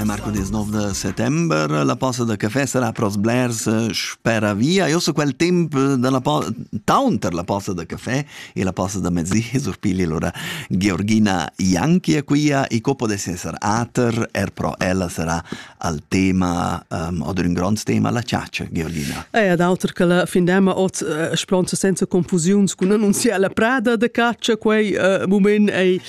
Eh, mercoledì 9 de settembre, la posta de caffè sarà pros blers eh, spera via. Io so quel tempo della po- town per la posta de caffè e la posta de mezzi surpigli allora Georgina Janki è qui e copo de essere ater er pro ella sarà al tema um, oder un grand tema la ciaccia Georgina. E ad auter che la findema ot uh, spronta senza confusiuns con annunziare la prada de caccia quei uh, moment è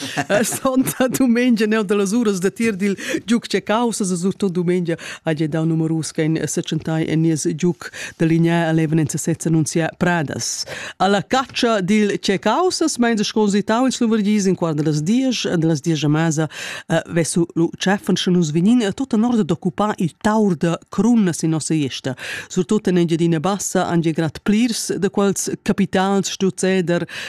Santa domenica ne da las uras da tir dil giuc che causas surtut domenica ha gia dau numerus che in sechentai en nies giuc da linea eleven en sezza annunzia Pradas. Alla caccia dil che causas meins sconzitau in Slovergis in quart das dies de las dies a masa vesu lu cheffen sche nus vinin tutta nord d'occupar il taur da crunnas in nossa iesta. Surtut en Engiadina Bassa han gia grad plirs da quels capitals stuzzeder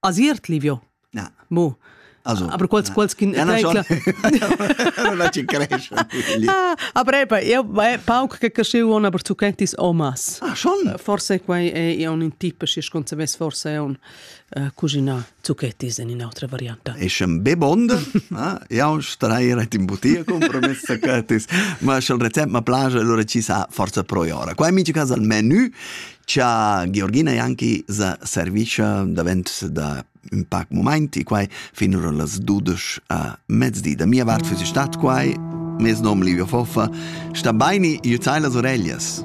Asiert livio. Na. Mo. Also, aber quals, quals kin ja, tecla la ci cresce ah aber eben io è pauc che così una per tu kentis omas ah schon forse quai è un tipo si sconza ves forse è un cucina zucchetis in un'altra variante è schon bebond ja strai ret in butia compromessa che tis ma schon rezept ma plagia allora ci sa forza pro ora qua mi ci casa al menù cha Georgina Janki sa servischa davent da ün pac mumaint e quai fin ora las dudesch a mezdi. Da mia vart füss stat quai. Mes nom Livio Foffa. Sta baini, jütai las oreglias.